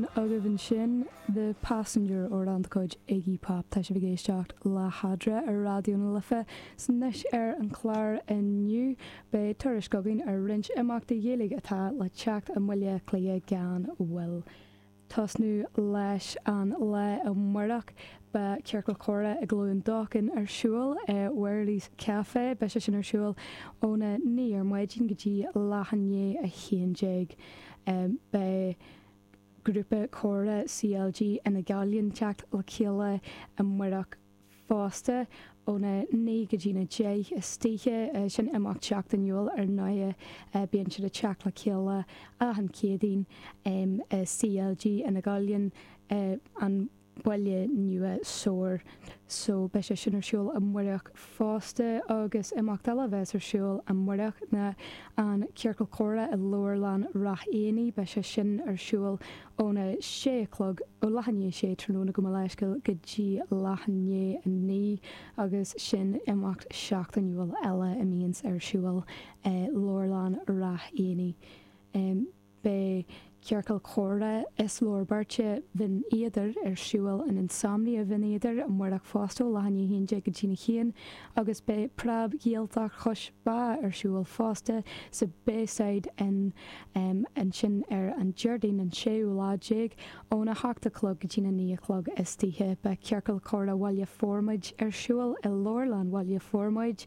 Sin agaibh ansin The Passenger amhrán de chuid Iggy Pop. Tá sibh ag éisteacht le hAdra ar Raidió na Life 's anois ar an chlár inniu beidh tuairisc againn ar roinnt imeachtaí Ghaeilge atá le teacht i mBaile Átha Cliath gan mhoill. tosnú leis an lá amárach beidh Ciorcal Comhrá i gCluain Dolcáin ar siúl i Wherley's Café. Beidh sé sin ar siúl óna naoi ar maidin go dtí leath i ndiaidh a haon déag. Beidh. Grúpa Comhrá CLG Fhine Ghallainn teacht le chéile amárach fosta, óna naoi go dtína deich istoíche, sin imeacht seachtainiúil, ar ndóighe, bíonn siad ag teacht le chéile achan Chéadaoin i CLG Fhine Ghallainn an. Baile Nua Sord so beidh sé sin ar siúl amárach fosta agus imeacht eile a bheas ar siúl amárach ná an Ciorcal Comhrá i Leabharlann Rath Éanaigh, beidh sé sin ar siúl óna sé a chlog, ó leath i ndiaidh a sé tráthnóna gabh mo leithscéal, go dtí leath i ndiaidh a naoi agus sin imeacht seachtainiúil eile a mbíonns ar siúl i Leabharlann Rath Éanaigh. Beidh Ciorcal Comhrá is leabhar beirte Bhinn Éadair ar siúl in Insomnia Bhinn Éadair amárach fosta ó leath i ndiaidh a haon déag go dtína haon agus beidh Preab-Ghaeltacht Chois Bá ar siúl fosta sa Bayside Inn ansin ar an Déardaoin an séú lá déag óna hocht a chlog go dtína naoi a chlog istoíche. Beidh Ciorcal Comhrá Bhaile Formaid ar siúl i Leabharlann Bhaile Formaid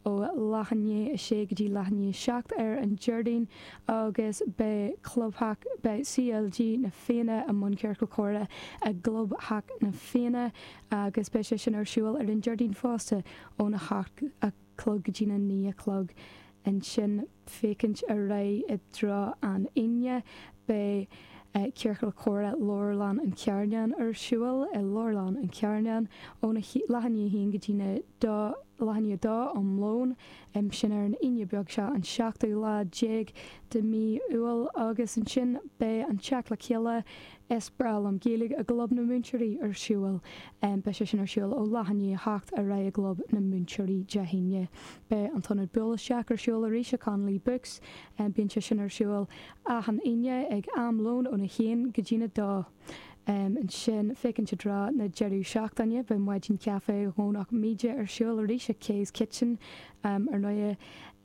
ó leath i ndiaidh a sé go dtí leath i ndiaidh a seacht ar an Déardaoin agus beidh clubtheach beidh CLG Na Fianna i mbun Ciorcal Comhrá i gclubtheach Na Fianna agus beidh sé sin ar siúl ar an Déardaoin fosta ón 8 a chlog go dtí'n 9 a chlog ansin féachaint ar aghaidh i dtreo an Aoine beidh Ciorcal Comhrá Leabharlann an Charnáin ar siúl i Leabharlann an Charnáin óna leath i ndiaidh a haon go dtína dó leath i ndiaidh a dó um lón Em. Sin ar an Aoine beag seo, an seachtú lá déag de mhí Iúil, agus ansin beidh an teacht le chéile, is breá liom Gaeilge, i gClub na Múinteoirí ar siúl. Beidh sé sin ar siúl ó leath i ndiaidh a 7 ar aghaidh i gClub na Múinteoirí Dé hAoine. Beidh an t-ionad Buail Isteach ar siúl arís i Connolly Books. Bíonn sé sin ar siúl achan Aoine ag am lón óna haon go dtína dó. Ansin, féachaint i dtreo na deireadh seachtaine, beidh Maidin Caife Dhomhnach Míde ar siúl arís ag Kay's Kitchen, ar ndóigh,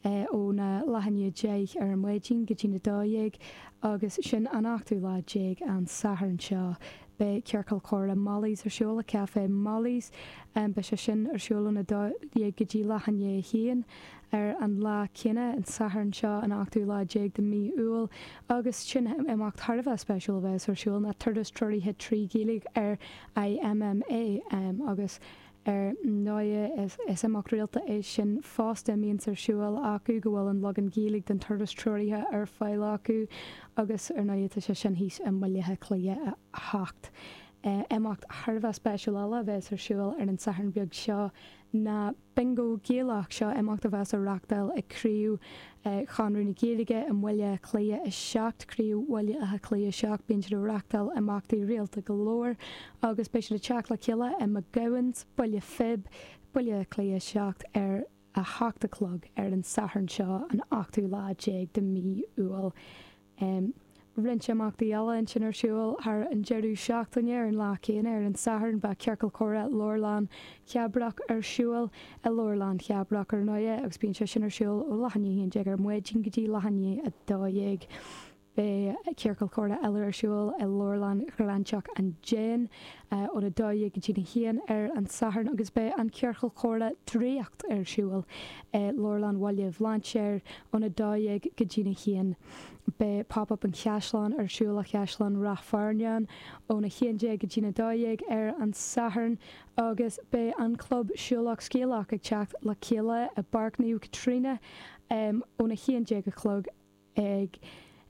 óna leath i ndiaidh a deich ar maidin go dtína dó dhéag, agus sin an ochtú lá déag, an Satharn seo. Beidh Ciorcal Comhrá Molly's ar siúl i Café Molly's, beidh sé sin ar siúl óna dó dhéag go dtí leath i ndiaidh a haon, Ar an lá céanna, an Satharn seo, an ochtú lá déag de mhí Iúil, agus sin imeacht thar a bheith spéisiúil a bheas ar siúl, ná Turas Treoraithe trí Ghaeilge ar IMMA, agus ar ndóigh is imeacht rialta é sin fosta a mbíonns ar siúl acu, go bhfuil an leagan Gaeilge den Turas Treoraithe ar fáil acu, agus ar ndóigh tá sé sin thíos i mBaile Átha Cliath 7. Imeacht thar a bheith spéisiúil eile a bheas ar siúl ar an Satharn beag seo ná. Bingo Gaelach, Seo imeacht a bheas á reachtáil ag Craobh Chonradh na Gaeilge i mBaile Átha Cliath 7, Craobh Bhaile Átha Cliath 7. Bíonn siad ag reachtáil imeachtaí rialta go leor agus beidh siad ag teacht le chéile i McGowan's, Baile Phib, Baile Átha Cliath 7 ar a seacht a chlog ar an Satharn seo, an ochtú lá déag de mhí Iúil. Em. roinnt imeachtaí eile ansin ar siúl thar an deireadh seachtaine, ar an lá céanna, ar an Satharn, beidh Ciorcal Comhrá Leabharlann Cheabrach ar siúl i Leabharlann Cheabrach, ar ndóighe, agus bíonn sé sin ar siúl ó leath i ndiaidh a haon déag ar maidin go dtí leath i ndiaidh a dó dhéag. Beidh Ciorcal Comhrá eile ar siúl i Leabharlann Ghráinseach an Déin, ón 12 go dtí'n 1 ar an Satharn agus beidh an Ciorcal Comhrá Draíocht ar siúl i Leabharlann Bhaile Bhlainséir ón 12 go dtí'n 1. Beidh Pop Up an Chaisleáin ar siúl i gCaisleán Rath Fearnáin ón 11 go dtí'n 12 ar an Satharn agus beidh an Club Siúlach Scéalach ag teacht le chéile i bPáirc Naomh Caitríona ón 11 a chlog ag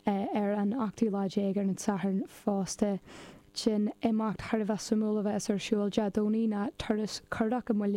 ar an ochtú lá déag ar an Satharn fosta. Sin imeacht thar a bheith suimiúil a bheas ar siúl Dé Domhnaigh ná turas curach i mBaile